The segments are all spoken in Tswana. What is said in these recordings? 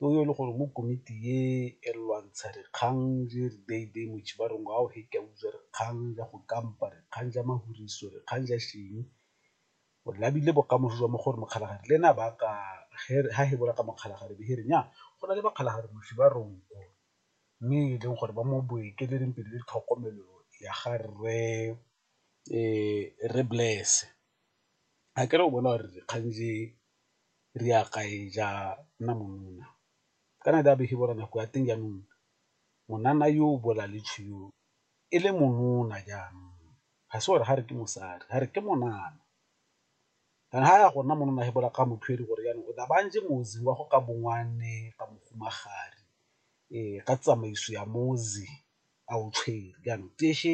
yo e le gore mo komiti e e lwantsha dikgang le ba re ngwao he ke a utswa dikgang ja go kampa dikgang ja mahuritso dikgang ja eng, o labile bokamoso jwa mo go re Mokgalajadi le ene a ba a ka ha he bola ka Mokgalajadi be he re nnyaa go na le Mokgalajadi moswi ba re nko mme e leng gore ba mo boekeletseng pele le tlhokomelo ya ga rre Bless akere o bona gore dikgang tse re ya gae ja nna monuna kana di a bege bora nako ya teng jaanong monana yo o bola le tshweu e le monona jaanong ga se gore ga re ke mosadi ga re ke monana kana ga ya go nna monana he bola ka motho e le gore jaanong o tla ba ntse motse wa go ka bongwane ka mohumagadi ka tsamaiso ya motse a o tshwere jaanong tee she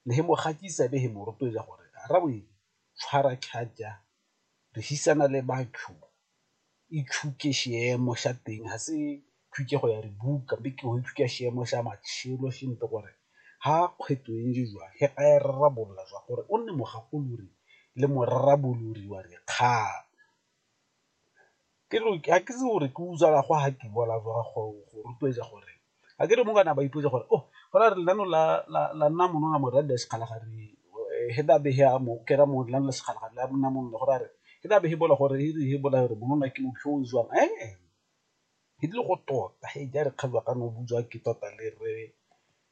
le he mo gatisa be he mo rotloetsa gore rra bo e tshwara charger rehisana le batho ithuke xiemo xa teng ha se tlhokego ya re buka be ke go ithuta xiemo xa matšhelo xe nto gore ha kgwetlho e ntse jwang ge a e rarabolola jwa gore o nne mogakolodi le morarabolodi wa dikgang. Ke re ga ke itse gore ke utswa ka go ha ke bona go rotloetsa gore ga ke re mo kana ba ipotsa gore oh go ra gore lenaneo la nna mono ga mora le sekgala ga re he ba bege a mo kera mo nna le sekgala ga la nna mo nna go ra gore ke tla be ke bona gore e re he bona gore monna ke motho o jwang ke tlile go tota he ja re kgatlha ka no butswa ke tota le re